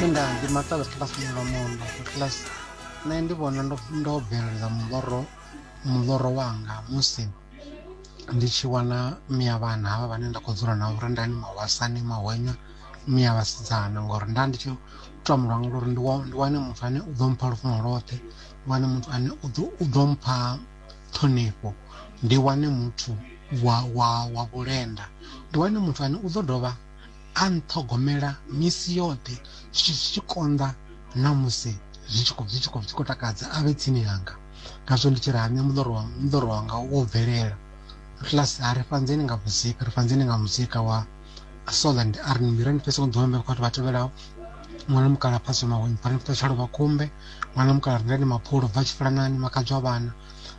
Minda ndi matavhe kilasini lwa mundo kilasi nṋe ndi vhona ndo ndo bvelela muḽoro muḽoro wanga musi ndi tshi wana mia vhana havha vhane nda khou dzula navho ri ndani mahwasani mahwenya mia vhasidzana ngori nda ndi tshi tou amba lwanga lori ndi wa- ndi wane muthu ane u ḓo mpha lufuno lwoṱhe ndi wane muthu ane u ḓo u ḓo mpha ṱhonifho ndi wane muthu wa wa wa vhulenda ndi wane muthu ane u ḓo dovha A nṱhogomela misi yoṱhe, zwi tshi konḓa na musi zwi tshi khou zwi tshi khou zwi tshi khou takadza a vhe tsini hanga. Ngazwo ndi tshi ri, Hanya muḽoro wa muḽoro wanga wo bvelela. Atlas a ri, Fhanzeni nga muzika, ri fhanzeni nga muzika wa Soland a ri, Ni mira ni fhese u ḓiwambela kha vhathu vha tevhelaho, Ṅwana mukala phaswe mawe, ni pfale mfeṱhalo vha khumbe, Ṅwana mukala rindani maphulo, bva tshifulanani, Makhadzwa vhana,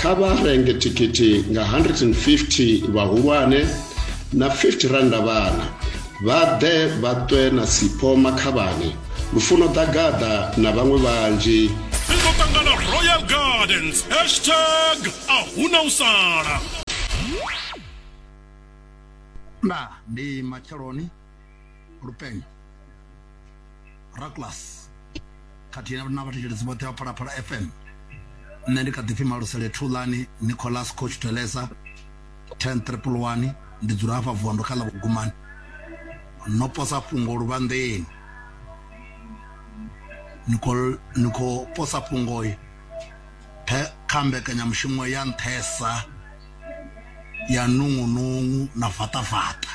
kha vha renge thikhithi nga 150 vhahulwane na 50 randa vhana vha ḓe vha ṱwe na sipho makhavhani lufuno ḓagaḓa na vhaṅwe vhanzhi ri ḓo ṱangana royal gardens hashtag a huna u sala na ndi matsheloni lupenyo raclas khathihi na vhathetshelesi vhoṱhe vha phalaphala fm nṋe ndi kha ḓipfi malusele thulani nicolas coach telesa 10 triple one ndi dzula hafha vuwa ndo kha ḽa vhugumani no posa fhungo luvhanḓeni ni khou- ni khou posa fhungo kha mbekanyamushumo ya nṱhesa ya nungunungu na vaṱavaṱa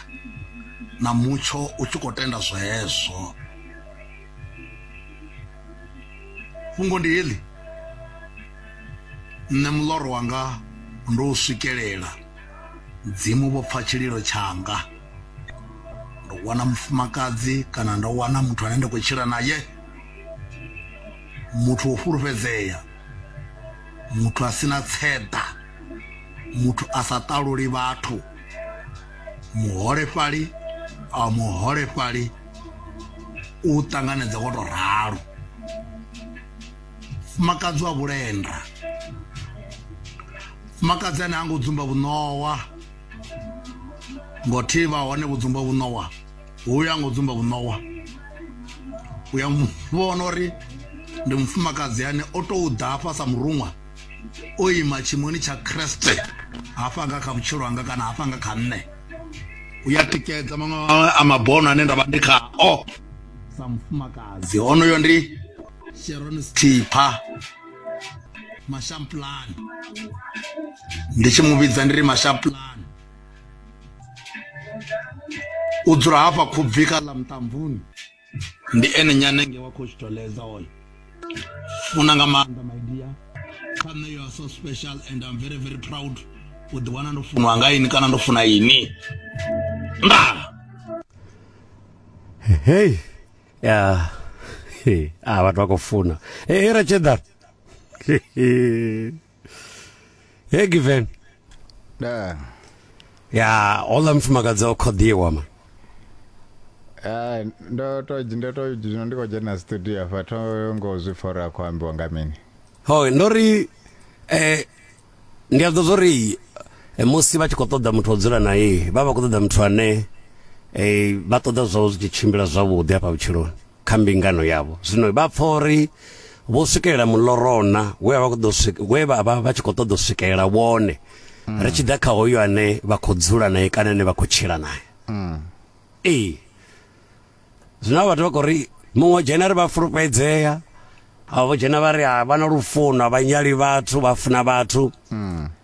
na mutsho u tshi khou tenda zwezwo fhungo ndi heḽi nṋe muloro wanga ndo u swikelela mudzimu vho pfa tshililo tshanga ndo wana mufumakadzi kana ndo wana muthu ane nda khou tshila naye muthu wo fulufhedzea muthu a sina tseḓa muthu a sa ṱaluli vhathu muholefhali a muholefhali u ṱanganedza wo to ralo fumakadzi wa vhulenda fumakadzi ane ha ngo dzumba vhuṋowa ngo thivha hone vho dzumba vhuṋowa hu ya ngo dzumba vhuṋowa u ya vhona uri ndi mufumakadzi ane o tou ḓafha sa muruṅwa o ima tshimoni tsha kreste hafha nga kha vhutshilo hanga kana hafha nga kha nṋe u ya tikedza maṅwe a mabono ane nda vha ndi khao sa mufumakadzi honoyo ndi sharon stipha mashampulani ndi tshi mu vhidza ndi ri mashampulani u dzula hafha khubvi kha ḽa muṱambuni ndi ene nyanenge wa coach toleza oyo funa nga maanḓa my dear kha nṋe you are so special and i'm very very proud u ḓi wana ndo funwa nga ini kana ndo funa ini nda hey ya hey a ah, vhathu vha khou funa hey ratshedar Hey given. Da. Ya, ola mfumakadzi o khoḓiwa ma. Ah, ndo to ndo to zwino ndi khou dzhena studio afha tho ngo zwi pfa uri a khou ambiwa nga mini Ho, ndo ri eh ndi a ḓo zwo ri eh, musi vha tshi khou ṱoḓa muthu o dzula naye, vha vha khou ṱoḓa muthu ane eh vha ṱoḓa zwawe zwi tshi tshimbila zwavhuḓi hafha vhutshiloni. kha mbingano yavho zwino vha pfa uri vho swikelela mulorona we vha ṱoḓa we vha vha vha tshi kho ṱoḓa swikelela wone mm. ri tshi ḓa kha hoyo ane vha khou dzula naye kana ane vha khou tshila naye mm. ee zwino vhathu vha khou ri muṅwe dzhena ri vha fulufhedzea avho dzhena vha ri vha na lufuno vha nyali vhathu vha funa vhathu mm.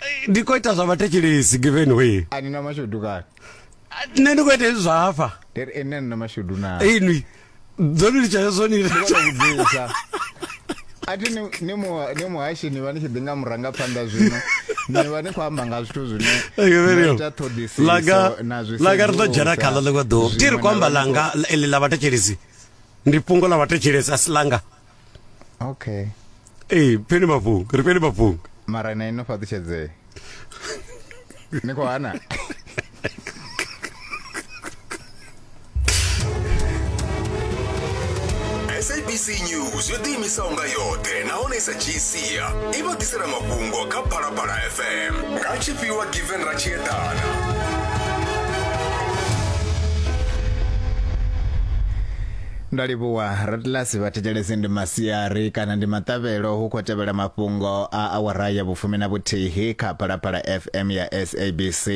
Eh, ndi khou ita zwa vhathetshelesi given way a ni na mashudu kani nṋe ndi khou ita hezwi zwa hafha ndi ri ene ni na mashudu na inwi dzo ni litsha hezwo ni vhudzisa a thi ni- ni mu- ni muhashi ni vha ni tshi ḓi nga murangaphanḓa zwino ni vha ni khou amba nga zwithu zwine Eke, very na well. ita ṱhoḓisiso Langa- na zwi langa ri ḓo dzhena sedzulusa, khaḽo ḽiṅwe ḓuvha ti ri zwiṅwe khou amba na- langa ḽi- ḽi ḽa vhathetshelesi ndi fhungo ḽa vhathetshelesi a si langa okay ee peni mafhungo ri peni mafhungo mara na ino fhaṱutshedzee ni khou hana sabc news yo ḓiimisaho nga yoṱhe nahone i sa dzhii sia i vha ḓisela mafhungo kha phalaphala fm nga tshifhiwa given ra tshi eḓana Ndo livhuwa. Ratlasi vha thetshelese ndi masiari kana ndi maṱavhelo hu khou tevhela mafhungo a awara ya vhufumi na vhuthihi kha Phalaphala FM ya SABC.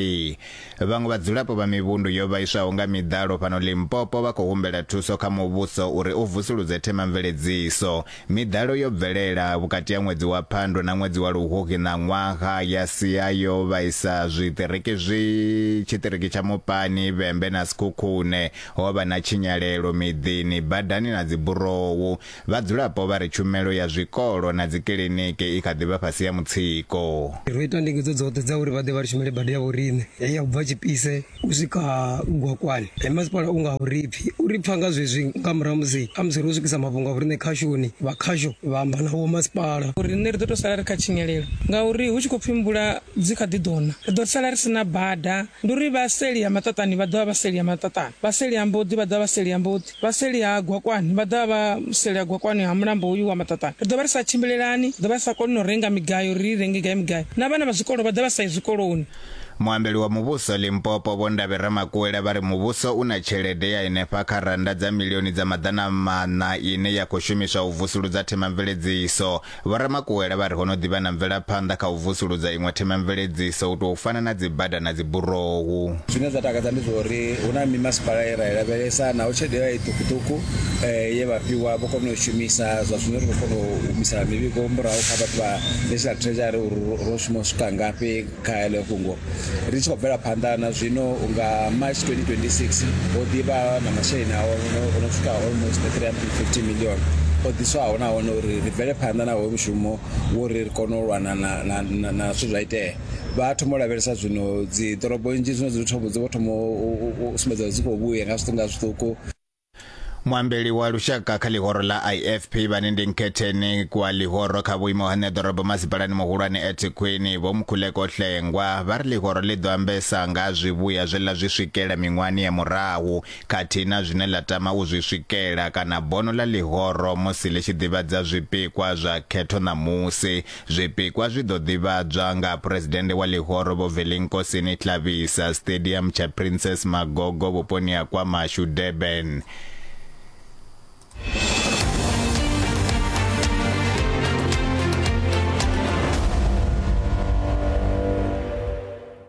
Vhaṅwe vhadzulapo vha mivhundu yo vhaiswaho nga miḓalo fhano Limpopo vha khou humbela thuso kha muvhuso uri u vusuludze themamveledziso. Miḓalo yo bvelela vhukati ha ṅwedzi wa Phando na ṅwedzi wa Luhuhi ṋaṅwaha ya sia yo vhaisa zwiṱiriki zwi tshiṱiriki tsha Mupani, Vhembe na Sekhukhune. Ho vha na tshinyalelo miḓini, badani na dziburowu. Vhadzulapo vha ri tshumelo ya zwikolo na dzikiḽiniki i kha ḓi vha fhasi ya mutsiko. Ro ita ndingedzo dzoṱhe dza uri vha ḓe vha ri shumele bada ya vhoriṋe heyi ya u bva Tshipise u swika Gwakwani. Masipala u nga a u ri pfi. U ri pfa nga zwezwi nga murahu ha musi a musi ro swikisa mafhungo a vhoriṋe khashoni, vha khasho vha amba na vhomasipala. Riṋe ri ḓo tou sala ri kha tshinyalelo ngauri hu tshi khou pfi mvula dzi kha ḓi ḓo na, ri ḓo sala ri si na bada. Ndi uri vha seli ha maṱaṱani vha ḓo vha vha seli ha maṱaṱani, vha seli ha mboḓi vha ḓo vha vha seli ha mboḓi, vha seli ha gwakwani vha ḓo vha vha seli ha gwakwani ha mulambo hoyu wa maṱaṱani. Ri ḓo vha ri sa tshimbilelani, ri ḓo vha ri sa koni na u renga migayo uri ri i renge gai migayo, na vhana vha zwikolo vha ḓo vha vha sa yi zwikoloni. Muambeli wa muvhuso Limpopo Vho Ndavhi Ramakuwela vha ri muvhuso u na tshelede ya henefha kha rannda dza milioni dza maḓana maṋa ine ya khou shumiswa u vusuludza themamveledziso Vho Ramakuwela vha ri ho no ḓi vha na mvelaphanḓa kha u vusuludza iṅwe themamveledziso u tou fana na dzibada na dziburohu. Zwine zwa takadza ndi zwa uri hu na mimasipala ye ra i lavhelesa naho tshelede ya i ṱhukhuṱhukhu ye vha fhiwa vho kona u i shumisa. Zwa zwino ri khou kona u humisa mivhigo murahu kha vhathu vha National Treasury uri ro shuma u swika ngafhi. Kha heḽo fhungo, ri tshi khou bvela phanḓa na zwino, nga March 2026 ho ḓi vha na masheleni a o no swika almost 350 million o ḓiswaho nahone uri ri bvele phanḓa na hoyo mushumo wo ri ri kone u lwana na zwithu zwa itea vha thoma u lavhelesa zwino dzi ḓorobo nnzhi zwino dzi thoma dzi vho thoma u sumbedza dzi khou vhuya nga zwiṱuku nga zwiṱuku muambeli wa lushaka kha ḽihoro ḽa ifp vhane ndi nkhetheni kwa ḽihoro kha vhuimo ha ṋeḓorobo masipalani muhulwane ethekhwini vho mukhuleko hlengwa vha ri ḽihoro ḽi ḓo ambesa nga zwivhuya zwe ḽa zwi swikela miṅwahani ya murahu khathihi na zwine ḽa tama u zwi swikela kana bono ḽa ḽihoro musi ḽi tshi ḓivhadza zwipikwa zwa khetho ṋamusi Zwipikwa zwi ḓo ḓivhadzwa nga Phresidennde wa Ḽihoro Vho Velinkosini Tlabisa Stadium tsha Princess Magogo vhuponi ha KwaMashu, Durban.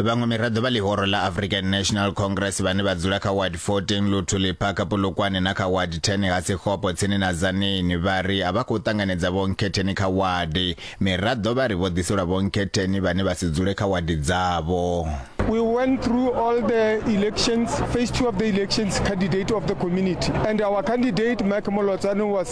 Vhaṅwe miraḓo vha ḽihoro ḽa African National Congress vhane vha dzula kha Ward 14 Luthuli Park Polokwane na kha Ward 10 ha Sekgopo tsini na Tzaneen vha ri a vha khou ṱanganedza vhonkhetheni kha wadi. Miraḓo vha ri vho ḓiselwa vhonkhetheni vhane vha si dzule kha wadi dzavho. We went through all the elections, phase two of the elections, candidate of the community. And our candidate, Mike Molotsane, was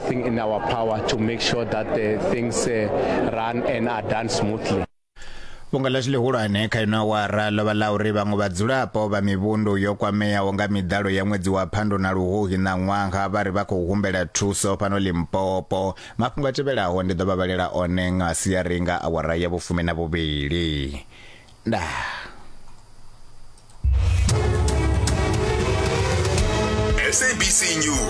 everything in our power to make sure that the uh, things uh, run and are done smoothly. vhunga ḽa tshi ḽihulwane kha ino awara ḽo vha ḽa uri vhaṅwe vhadzulapo vha mivhundu yo kwameaho nga miḓalo ya ṅwedzi wa phando na luhuhi na ṅwaha vha ri vha khou humbela thuso fhano limpopo mafhungo a tevhelaho ndi ḓo vha vhalela one nga siari nga awara ya vhufumi na vhuvhili ndaa SABC News